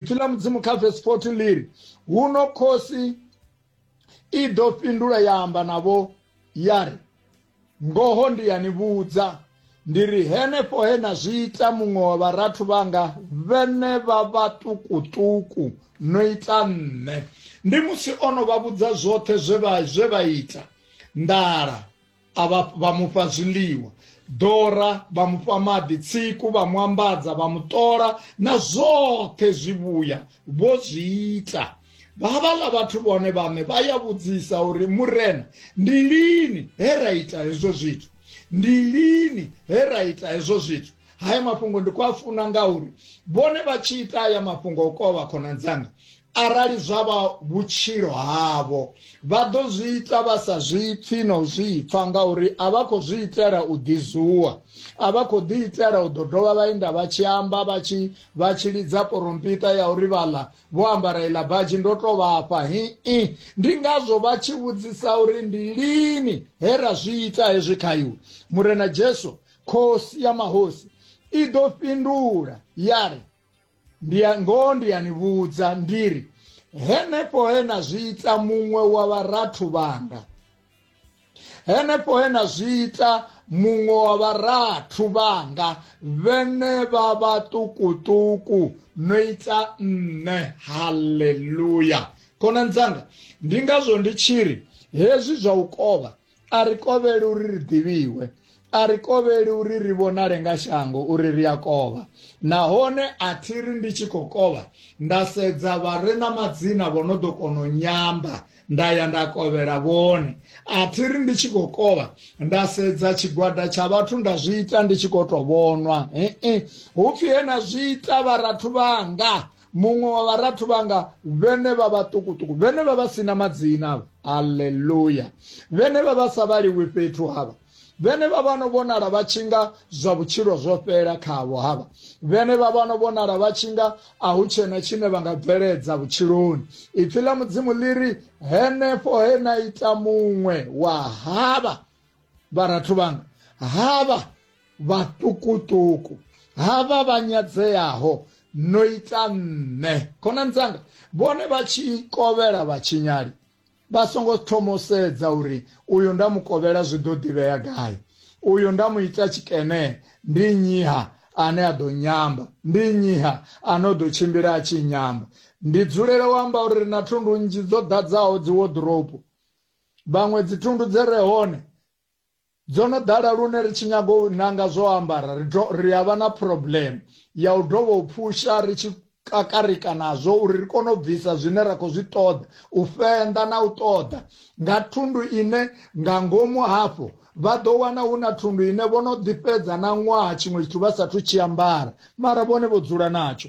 Ipfi ḽa Mudzimu kha vesi 14 ḽi ri, Huno khosi i ḓo fhindula ya amba navho ya ri, Ngoho ndi ya ni vhudza, ndi ri henefho he na zwi ita muṅwe wa vharathu vhanga vhenevha vhaṱukuṱuku no ita nṋe. Ndi musi o no vha vhudza zwoṱhe zwe vha zwe vha ita nḓala. a vha vha mufha zwiḽiwa dora vha mufha maḓi tsiku vha mu ambadza vha mu ṱola na zwoṱhe zwivhuya vho zwi ita vhavhaḽa vhathu vhone vhaṋe vha ya vhudzisa uri murena ndi lini he ra ita hezwo zwithu ndi lini he ra ita hezwo zwithu haya mafhungo ndi khou a funa ngauri vhone vha tshi ita aya mafhungo o kovha khonani dzanga Arali zwa vha vhutshilo havho, vha ḓo zwi ita vha sa zwi pfi na u zwi pfa, ngauri a vha khou zwi itela u ḓizuwa. A vha khou ḓi itela u ḓo dovha vha inda vha tshi amba vha tshi vha tshi lidza porompita ya uri vhaḽa vho ambara iḽa badzhi ndo tou vha fha. Hi-i. Ndi ngazwo vha tshi vhudzisa uri ndi lini he ra zwi ita hezwi kha iwe? Murena Jesu, Khosi ya mahosi, i ḓo fhindula ya ri, ndi ya- ngoho ndi ya ni vhudza ndi ri henefho he na zwi ita muṅwe wa vharathu vhanga henefho he na zwi ita muṅwe wa vharathu vhanga vhene vha vhaṱukuṱuku no ita nṋe haleluya khonani dzanga ndi ngazwo ndi tshi ri hezwi zwa u kovha A ri kovheli uri ri ḓivhiwe. A ri kovheli uri ri vhonale nga shango uri ri a kovha. Nahone a thi ri ndi tshi khou kovha nda sedza vha re na madzina vho no ḓo kona u nyamba nda ya nda kovhela vhone. A thi ri ndi tshi khou kovha nda sedza tshigwada tsha vhathu nda zwi ita ndi tshi khou tou vhonwa. He-e, hu pfi he na zwi ita vharathu vhanga muṅwe wa vharathu vhanga vhene vha vha ṱukuṱuku vhene vha vha sina madzina avha aleluya vhene vha vha sa vhaliwi fhethu havha vhene vha vhano vhonala vha tshi nga zwa vhutshilo zwo fhela khavho havha vhene vha vhano vhonala vha tshi nga a hu tshena tshine vha nga bveledza vhutshiloni ipfi ḽa mudzimu ḽi ri henefho he na ita muṅwe wa havha vharathu vhanga havha vhaṱukuṱuku havha vha nyadzeaho no ita nṋe khonani dzanga vhone vha tshi kovhela vhatshinyali vha songo thomo sedza uri uyu nda mu kovhela zwi ḓo ḓivhea gai uyu nda mu ita tshikene ndi nyiha ane a ḓo nyamba ndi nyiha ane o ḓo tshimbila a tshi nyamba ndi dzulela u amba uri ri na thundu nnzhi dzo ḓadzaho dzi woḓoropo Vhaṅwe dzithundu dze re hone dzo no ḓala lune ri tshi nyaga u nanga zwo ambara ri to ri a vha na problem ya u dovha u phusha ri tshi kakarika nazwo uri ri kone u bvisa zwine ra khou zwi ṱoḓa u fenda na u ṱoḓa nga thundu ine nga ngomu hafho vha ḓo wana hu na thundu ine vho no ḓi fhedza na ṅwaha tshiṅwe tshithu vha sathu tshi ambara mara vhone vho dzula natsho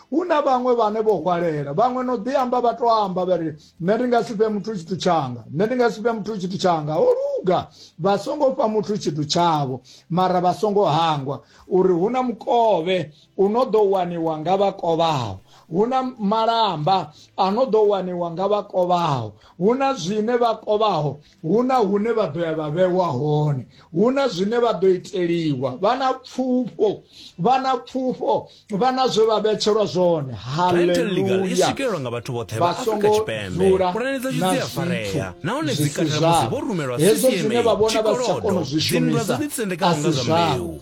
hu na vhaṅwe vhane vho hwalela vhaṅwe no ḓi amba vha to amba vha ri nṋe ndi nga si fhe muthu tshithu tshanga nṋe ndi nga si fhe muthu tshithu tshanga ho luga vha songo fha muthu tshithu tshavho mara vha songo hangwa uri hu na mukovhe u no ḓo waniwa nga vha kovhaho hu na malamba a no ḓo waniwa nga vha kovhaho hu na zwine vha kovhaho Hu na hune vha ḓo ya vha vhewa hone, hu na zwine vha ḓo iteliwa, vha na pfufho, vha na pfufho, vha na zwe vha vhetshelwa zwone. Haleluya! I swikelelwa nga vhathu vhoṱhe vha Afrika Tshipembe. Pulane dzashu dzi a farea nahone dzi katela musi vho rumelwa CCM, tshikolodo, dzinndwa dzo ḓitsendekaho nga zwa mbeu,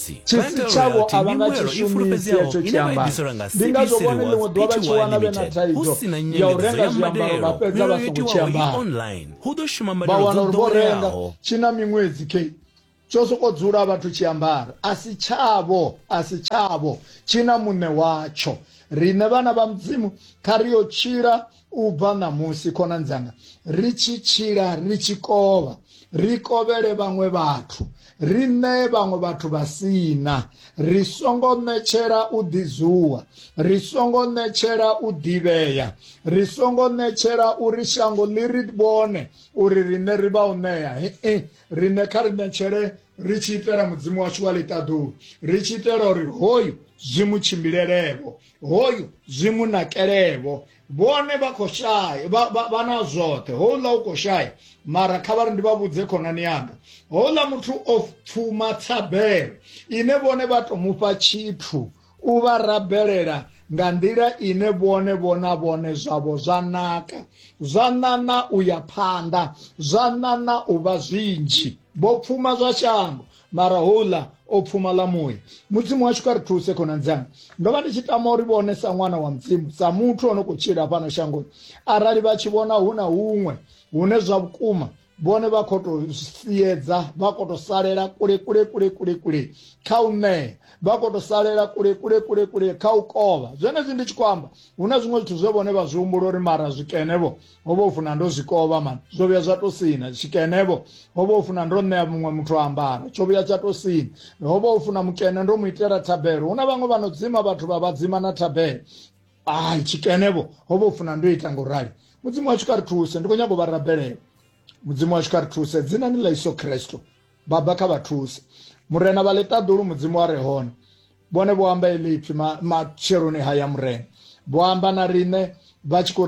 Tshisi tshavho a vha nga tshi shumisi hetsho tshiambaro. Ndi ngazwo vhone ḽiṅwe ḓuvha vha tshi wana vhe na thaidzo ya u renga zwiambaro vha fhedza vha songo tshi ambara. Vha wana uri vho renga tshi na miṅwedzi kei tsho sokou dzula vhathu tshi ambara a si tshavho, a si tshavho, tshi na muṋe watsho. Riṋe vhana vha Mudzimu kha ri yo tshila u bva ṋamusi khonani dzanga ri tshi tshila ri tshi kovha ri kovhele vhaṅwe vhathu ri ṋee vhaṅwe vhathu vha sina ri songo ṋetshela u ḓizuwa ri songo ṋetshela u ḓivhea ri songo ṋetshela uri shango ḽi ri vhone uri riṋe ri vha u ṋea hee riṋe kha ri ṋetshele ri tshi itela mudzimu washu wa ḽiṱaḓulu ri tshi itela uri hoyu zwi mu tshimbilelevho hoyu zwi mu nakelevho vhone vha khou shaya vha- vha vha na zwoṱhe houḽa u khou shaya mara kha vha ri ndi vha vhudze khonani yanga houḽa muthu o pfuma thabelo ine vhone vha to mufha tshithu u vha rabelela nga nḓila ine vhone vhona vhone zwavho zwa naka zwa ṋaṋa u ya phanḓa zwa ṋaṋa u vha zwinzhi vho pfuma zwa shango mara houḽa o pfumala muya mudzimu washu kha ri thuse khonani dzanga ndo vha ndi tshi tama uri vhone sa ṅwana wa mudzimu sa muthu o no khou tshila fhano shangoni arali vha tshi vhona hu na huṅwe hune zwa vhukuma vhone vha khou tou siedza vha khou tou salela kule kule kule kule kule kha u ṋea vha khou tou salela kule kule kule kule kha u kovha zwenezwi ndi tshi khou amba hu na zwiṅwe zwithu zwe vhone vha zwi humbula uri mara zwikene vho ho vha u funa ndo zwikovha mani zwo vhuya zwa to sina tshikenevho ho vha u funa ndo ṋea muṅwe muthu ambara tsho vhuya tsha to sina ho vha u funa mukene ndo mu itela thabelo hu na vhaṅwe vha no dzima vhathu vha vhadzima na thabelo ai tshikenevho ho vha u funa ndo ita nga u rali mudzimu washu kha ri thuse ndi khou nyago vha rabelela mudzimu washu kha ri thuse dzina ni ḽa iso khristo baba kha vha thuse murena vha ḽiṱaḓulu mudzimu wa re hone vhone vho amba elipfi matsheloni haya murena vho amba na riṋe vha tshi khou